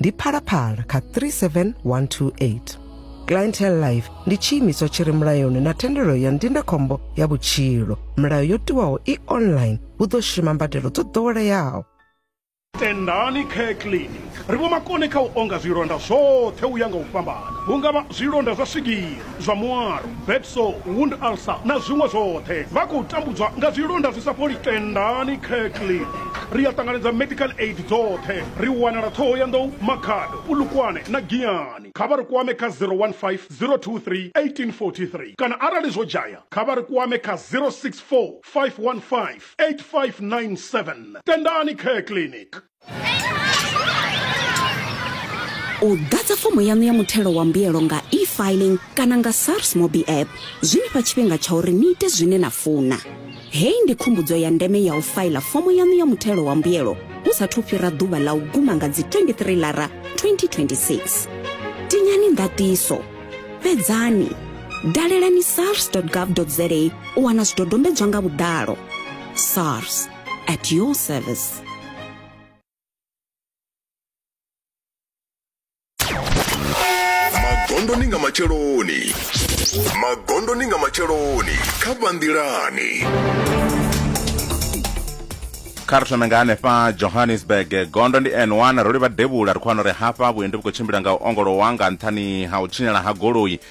ndi phalaphala kha 37128 clientele life ndi tshiimiswa tshi re mulayoni na thendelo ya ndindakhombo ya vhutshilo milayo yo tiwaho i online hu ḓo shuma mbadelo dzo ḓoweleaho tendani care clinic ri vho makone kha u onga zwilonda zwoṱhe u ya nga u fhambana hu nga vha zwilonda zwa swigiri zwa muwalo, bed sore, wound ulcer na zwiṅwe zwoṱhe. Vha khou tambudzwa nga zwilonda zwi sa fholi. Tendani Kirkley. Ri a ṱanganedza medical aid dzoṱhe. Ri wanala Thohoyandou, Makhado, Polokwane na Giyani. Kha vha ri kwame kha 015 023 1843 kana arali zwo dzhaya kha vha ri kwame kha 064 515 8597. Tendani Care Clinic. u ḓadza fomo yaṋu ya muthelo wa mbuyelo nga e-filing kana nga sars mobi app zwi ni fha tshifhinga tsha uri ni ite zwine na funa hei ndi khumbudzo ya ndeme ya u faila fomo yaṋu ya muthelo wa mbuyelo hu sathu fhira ḓuvha ḽa u guma nga dzi 23 lara 2026 tinyani ndatiso fhedzani dalelani sars gov za u wana zwidodombedzwa nga vhuḓalo sars At your service. magondoni nga matsheloni magondoni nga matsheloni kha vhanḓilani kha ri thome nga hanefha johannesburg gondo ndi n1 ro livha devhula ri khou wana uri hafha vhuendi vhu khou tshimbila nga u ongolowa nga nṱhani ha u tshinyala ha goloi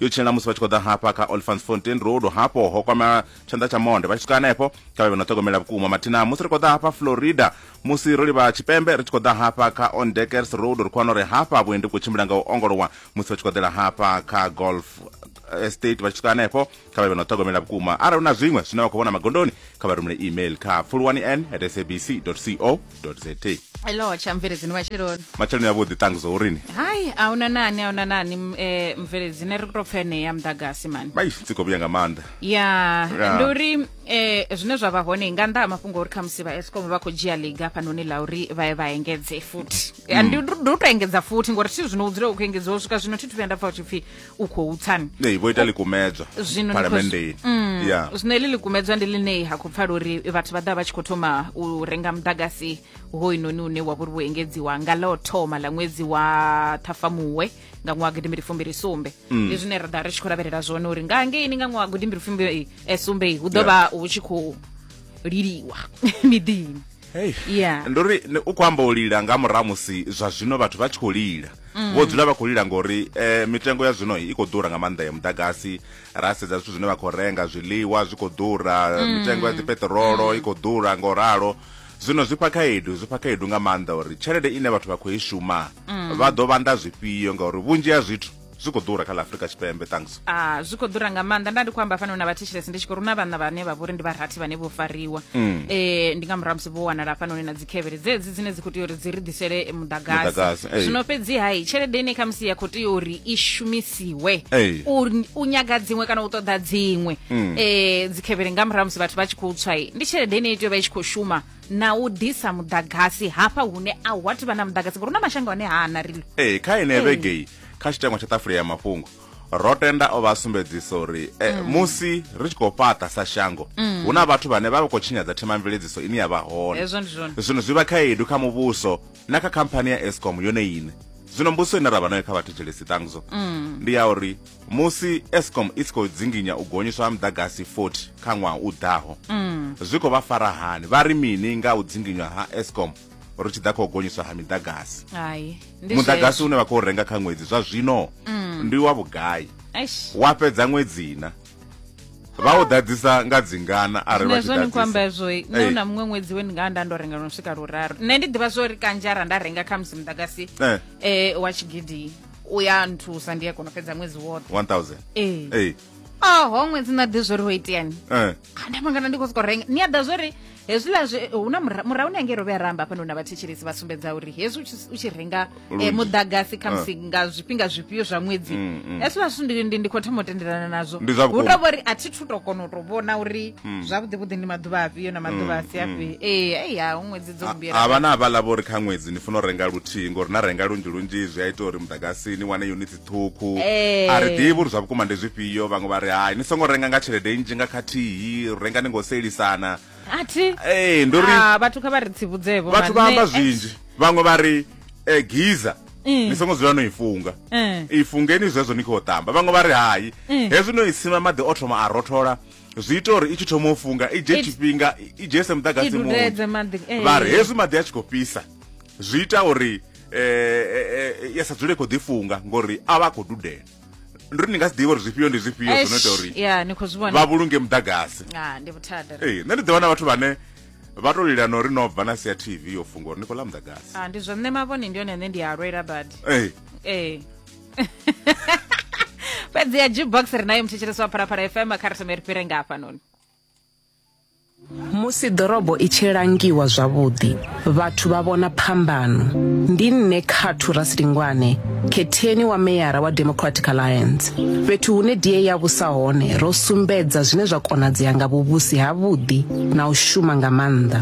yo tshilela musi vha tshi khou ḓa hafha kha olfanfontein road hafho ho kwama tshanḓa tsha monde vha tshi swika hanefho kha vhe vha no ṱhogomela vhukuma mathina musi ri khou ḓa hafha florida musi ro livha tshipembe ri tshi khou ḓa hafha kha ondekers road ri khou wana uri hafha vhuendi khou tshimbila nga u ongolowa musi vha tshi khou ḓela hafha kha golf estate vha tshi swika hanefho kha vha vhe no ṱhogomela vhukuma arali hu na zwiṅwe zwine vha khou vhona magondoni kha vha rumele email kha fulwani n at sabc co za hello tsha mveledzini matsheloni matsheloni avhuḓi ṱangu zwa urini hai a una nani a una nani m- eh, mveledzini ri tou pfa enei ya muḓagasi mani bai dzi khou vhuya nga maanḓa ya Ya. ndi uri eh, zwine zwa vha hone nga nnḓa ha mafhungo uri khamusi vha escom vha khou dzhia liga hafhanoni la uri vha ye vha engedze futhi Ya, ndi ndi u tou engedza futhi ngori thi zwino u dzula u khou engedziwa u swika zwino thi thu vhuya nda pfa u tshi pfhi u khou tsani nee vho ita likumedzwa zwino phalamendeni mm, ya zwino heḽi likumedzwa ndi ḽine ha khou pfala uri vhathu vha ḓa vha tshi khou thoma u renga muḓagasi hoyinoni une wa vhori wo engedziwa nga ḽo thoma ḽa ṅwedzi wa ṱhafamuwe nga ṅwaha gidimbiri fumbiri sumbe mm. ndi zwine ra ḓa ri tshi khou lavhelela zwone uri nga ngeini nga ṅwaha gidimbiri fumbiri eh, sumbe hu ḓo vha hu tshi khou liliwa miḓini Hey. Yeah. ndi uri ni- u khou amba u lila nga murahu musi zwa zwino vhathu vha tshi khou lila Mm. vho dzula vha khou lila ngori eh, mitengo ya zwino i khou ḓura nga maanḓa ya muḓagasi ra sedza zwithu zwine vha khou renga zwiḽiwa zwi khou ḓura Mm. mitengo ya dzipeṱirolo i khou ḓura nga u ralo zwino zwi fha khaedu zwi fha khaedu nga maanḓa uri tshelede ine vhathu vha khou i shuma Mm. vha ḓo vhanda zwifhio ngauri vhunzhi ha zwithu zwi khou ḓura kha ḽa afrika tshipembe thanks a zwi khou ḓura nga maanḓa nda ndi khou amba fano na vhathetshelesi ndi tshi khou runa vhana vhane vha vhori ndi vharathi vhane vho fariwa um ndi nga murahu musi vho wanala hafhanoni na dzikhevhele dzedzi dzine dzi khou tea uri dzi ri ḓisele eh, Muḓagasi, muḓagasi eh. zwino fhedzi hai tshelede ine khamusi ya khou tea uri i shumisiwe Eh. u, u nyaga dziṅwe kana u ṱoḓa dziṅwe um dzikhevhele nga murahu musi vhathu vha tshi khou tswa i, ndi tshelede ine i tea u vha i tshi khou shuma na u ḓisa muḓagasi hafha hune a hu athu vha na muḓagasi ngori hu na mashango ane ha ana rilo ee kha ine vhegei kha tshitangwa tsha ṱafule ya mafhungo ro tenda o vha sumbedzisa uri eh, mm. musi ri tshi khou fhaṱa sa shango mm. hu na vhathu vhane vha vha khou tshinyadza themamveledziso ine ya vha hone zwino zwi vha khaedu kha muvhuso na kha khamphani ya escom yone ine zwino mbuso ine ra vha nayo kha vhathu jelesi ṱangzo mm. ndi ya uri musi escom i tshi khou dzinginya u gonyiswa ha muḓagasi 40 kha ṅwaha u ḓaho mm. zwi khou vha fara hani vha ri mini nga u dzinginywa ha escom ri tshi ḓa kha u gonyiswa ha miḓagasi muḓagasi une vha khou renga kha ṅwedzi zwa zwino mm. ndi wa vhugai wa fhedza ṅwedzi na vha u ḓadzisa nga dzingana arali vha tshi ḓadzisa amba zwo nṋe na muṅwe ṅwedzi we ndi nga nda ndo renga no swika luraru nṋe ndi ḓivha zwo ri kanzhi arali nda renga kha musi muḓagasi eh, eh wa tshigidi uyanthusa ndiye kono fhedza ṅwedzi woṱhe 1000 ee ei oho ṅwedzi na ḓi zwori ho iteani eh andamangana ndi khou sokou renga ni a ḓa zwori hezwiḽa zwe hu na mura- murahu ni ange ro vhe ramba hafha na vhathetshelesi vha sumbedza uri hezwi u tshi- u tshi renga eh, Lunzhi. muḓagasi khamusi nga zwifhinga zwifhio zwa ṅwedzi Mm, mm. hezwiḽa zwithu ndi- ndi- ndi khou thoma u tendelana nazwo Ndi zwa hu vhukuma. tou vhori a thi thu tou kona u tou vhona uri zwavhuḓi vhuḓi ndi maḓuvha afhio na maḓuvha a si afhio ee eya ṅwedzi dzo Ha- lugela havha na havhaḽa vho ri kha ṅwedzi ni funa u renga luthihi ngori na renga lunzhi lunzhi zwi a ita uri muḓagasi ni wane unit ṱhukhu Eh. a ri ḓivhi uri zwa vhukuma ndi zwifhio vhaṅwe vha ri hai ni songo renga nga tshelede nnzhi nga khathihi renga ni ngo sielisana athi ee ndi uri Ah, vhathu kha vha ri tsivudzevho vhathu vha amba zwinzhi vhaṅwe vha ri eh, giza Mm. ni songo dzula no i funga Mm. i fungeni zwezwo ni khou ṱamba vhaṅwe vha ri hai Mm. hezwi no i sima maḓi o thoma a rothola zwi ita uri i tshi thoma u funga i dzhe tshifhinga i dzhese muḓagasi munzhi eh. vha ri hezwi maḓi a tshi khou fhisa zwi ita uri um eh, eh, ya sa dzule khou ḓifunga ngori a vha a khou dudela ndi uri ni nga si ḓivha uri zwifhio ndi zwifhio zwi no ita uri vha vhulunge muḓagasi ah, nṋe ndi ḓivha na vhathu vhane vha to lila no ri no bva na sia tv yo funga uri ni khou ḽa muḓagasi ah, ndi zwa nṋe mavhone ndi yone ane ndi a lwela badi ee fhedzi ya jukebox ri nayo muthetshelesi wa pharapara fm kha ri thome ri fhire nga hafhanoni musi ḓorobo i tshi langiwa zwavhuḓi vhathu vha vhona phambano ndi nṋe khathu rasilingwane khetheni wa meyara wa democratic alliance fhethu hune die ya vhusa hone ro sumbedza zwine zwa konadzea nga vhuvhusi havhuḓi na u shuma nga maanḓa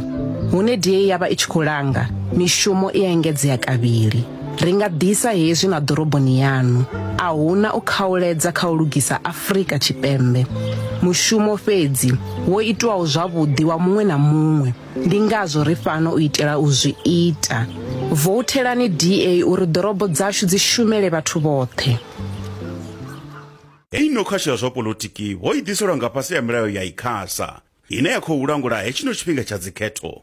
hune die ya vha i tshi khou langa mishumo i engedzea kavhili Ri nga ḓisa hezwi na ḓoroboni yanu. A huna u khauledza kha u lugisa Afrika Tshipembe. Mushumo fhedzi wo itwaho zwavhuḓi wa muṅwe na muṅwe. Ndi ngazwo ri fhano u itela u zwi ita. Vouthelani DA uri ḓorobo dzashu dzi shumele vhathu vhoṱhe. Hei no khasho ya zwa polotiki ho i ḓiselwa nga fhasi ha milayo ya Icasa, ine ya khou langula hetshino tshifhinga tsha dzikhetho.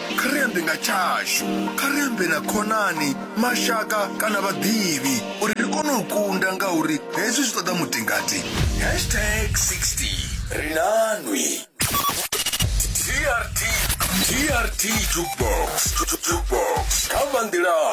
Kha ri ambe nga tshashu. Kha ri ambe na khonani, mashaka kana vhaḓivhi uri ri kone u kunda ngauri hezwi zwi ṱoḓa mutingati. Hashtag 60 Ri na Nwi. TRT TRT Jukebox Jukebox Kha vha nḓilani.